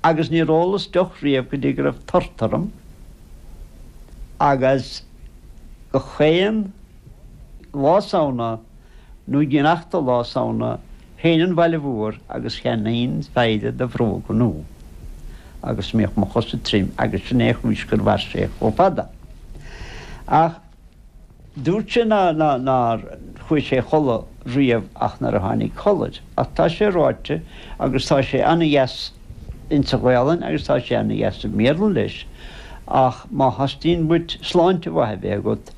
agus níor ólas deoch riamh go dtí go raibh tart orm agus gach aon Lá Samhna nó i ngiorracht do Lá Samhna théinn an bhaile mhór agus cheannaínn feidhre de bhróga nua agus bhíodh mo chosa tirim agus sin é chúis gur mhair sé chomh fada ach Dúirt sé nár chuaigh sé a chodladh riamh ach nuair a tháinig codladh. Ach tá sé ráite agus tá sé an-dheas insa Ghaolainn agus tá sé an-dheas i mBéarla leis. Ach má theastaíonn uait sláinte mhaith a bheith agat,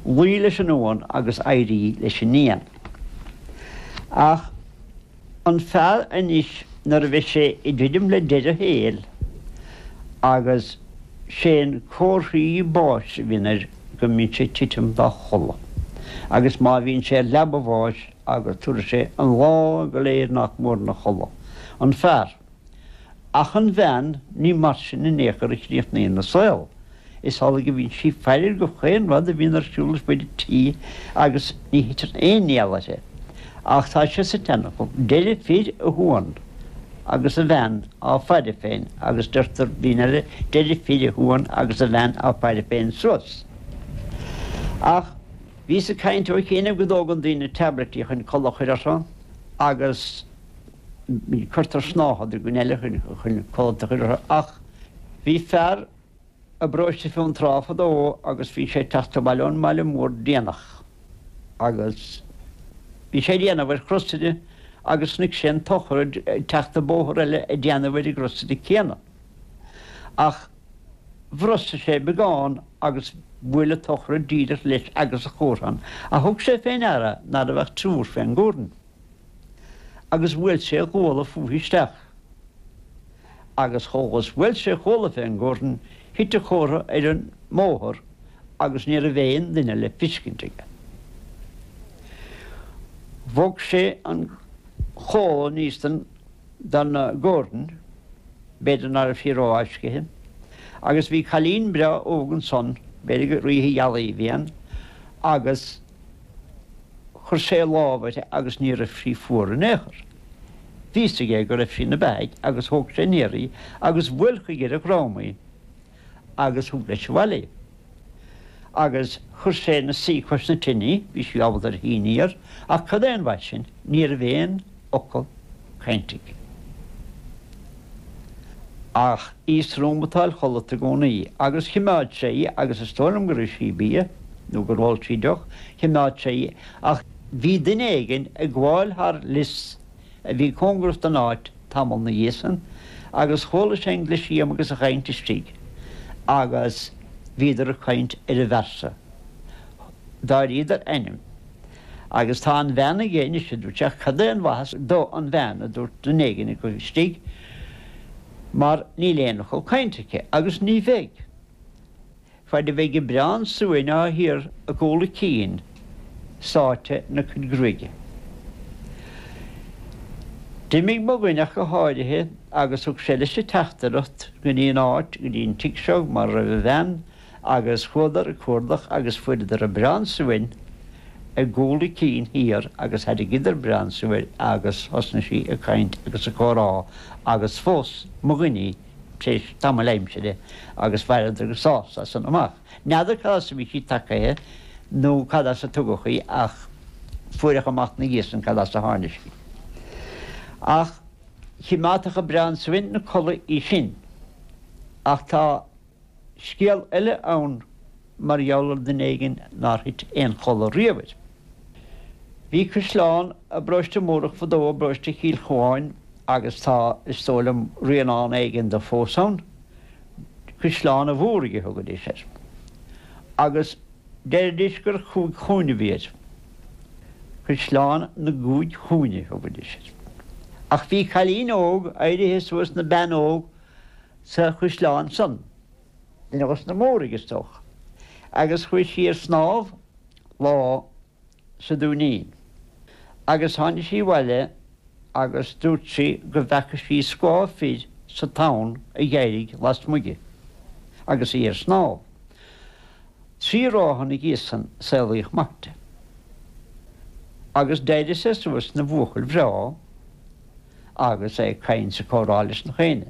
luigh leis an uan agus éirigh leis an éan. Ach. an fear anois nuair a bheidh sé ag druidim le deireadh a shaoil agus sé na comharthaí báis a bhíonn air go mbíonn sé ag titim dá chodladh agus má bhíonn sé ar leaba a bháis agus tabharfaidh sé an lá go léir nach mór ina chodladh. An fear. Ach an bhean, ní mar sin in aon chor a chríochnaíonn a saol. Is amhlaidh a bhíonn sí ag faire ar gach aon rud a bhíonn ar siúl ar fuaid an tí agus ní thiteann aon néal uirthi. Ach tá sé sa tseanfhocal, deireadh fir a shuan. Agus a bhean á faire féin agus deir daoine eile, deireadh fir a shuan agus a bhean á faire féin suas. Ach bhíos ag caint ó chianaibh go dtógann daoine tablaití chun codladh a chur orthu agus. cuirtear snáthad i gcuid eile chun codlata a chur ortha ach bhí fear i bparóiste Fionn Trá fadó agus bhí sé ag teacht abhaile ón mbaile mór déanach agus bhí sé ag déanamh ar chrosaire agus chonaic sé an tsochraid ag teacht an bóthar eile ag déanamh ar an gcrosaire céanna ach bhrostaigh sé beagán agus bhuail an tsochraid díreach leis agus an chomhra thug sé fé ndeara ná raibh ach triúr fén gcomhrainn. agus bhuail sé a ghuala fúithi isteach. Agus chomh luath is bhuail sé a ghuala fén gcomhrainn thit an chomhra ar an mbóthar agus ní raibh aon duine le feiscint aige. Bhog sé an chomhla aníos den gcomhrainn, b'fhéidir ná raibh sí rófháiscithe, agus bhí cailín breá óg ansan, b'fhéidir gur oíche ghealaí a bhí ann, agus. Chuir sé a lámh uirthi agus ní raibh sí fuar in aon chor. Bhí a fhios aige go raibh sí ina beathaidh agus thóg sé aniar í agus bhuail chuige ar a dhrom í agus thug leis abhaile í. Agus chuir sé ina suí cois na tine í, bhí sí ábalta ar shuí aniar, ach cad é an mhaith sin? Ní raibh aon fhocal cainte aici ach í ag srúmatáil chodlata i gcónaí agus chimeád sé í agus is dóigh liom gur ith sí bia nó gur ól sí deoch, chimeád sé í ach bhí duine éigin ag gabháil thar lios a bhí cóngarach don áit tamall ina dhiaidh san agus chuala sé an glisiam agus an chaint istigh agus bhíodar ag caint ar an bhfear so. D'áiríodar ainm. Agus tá an bhean aige anois, a dúirt sé. Ach cad é an mhaitheas do an bhean, a dúirt duine éigin acu istigh, mar níl aon fhocal cainte aici, agus ní bheidh. Fad a bheidh an biorán suain atá thiar i gcúl a cinn, sáite ina cuid gruaige. D'imigh mo dhuine ach go háirithe agus thug sé leis an teachtaireacht go dtí an áit, go dtí an tigh seo mar a raibh an bhean, agus chuadar ag cuardach agus fuaireadar an biorán suain i gcúl a cinn thiar agus thairrigeadar an biorán suain agus thosnaigh sí ag caint agus ag comhrá agus phós mo dhuine í tar éis tamaill aimsire agus mhaireadar go sásta as san amach. N'fheadar cad as a bhí sí tagtha nó cad as a tugadh í ach fuaireadh amach na dhiaidh san cad as a tháinig sí. Ach chimeádfadh an biorán suain na codladh í sin. Ach tá. scéal eile ann mar gheall ar dhuine éigin nár thit aon chodladh riamh air. Bhí caisleán i bParóiste Múrach fadó i bparóiste Chill Chuáin agus tá, is dóigh liom, rianán éigin de fós ann. Caisleán a' Mhúraigh a thugaidís air. Agus deiridís gur chúig chúinne a bhí air. Caisleán na gCúig Chúinne a thugaidís air. Ach bhí cailín óg éirithe suas na bean óg sa chuisleán san. Duine dhos na Móraigh, is dócha. Agus chuaigh sí ar snámh lá sa Dúinín. Agus tháinig sí abhaile agus dúirt sí go bhfeaca sí scáth fir sa tonn a dh'éirigh lasmuigh di agus í ar snámh. Trí ráithe ina dhiaidh san saolaíodh mac di. Agus d'éirigh sé suas 'na bhuachaill bhreá agus é ag caint 's ag comhrá leis nach éinne.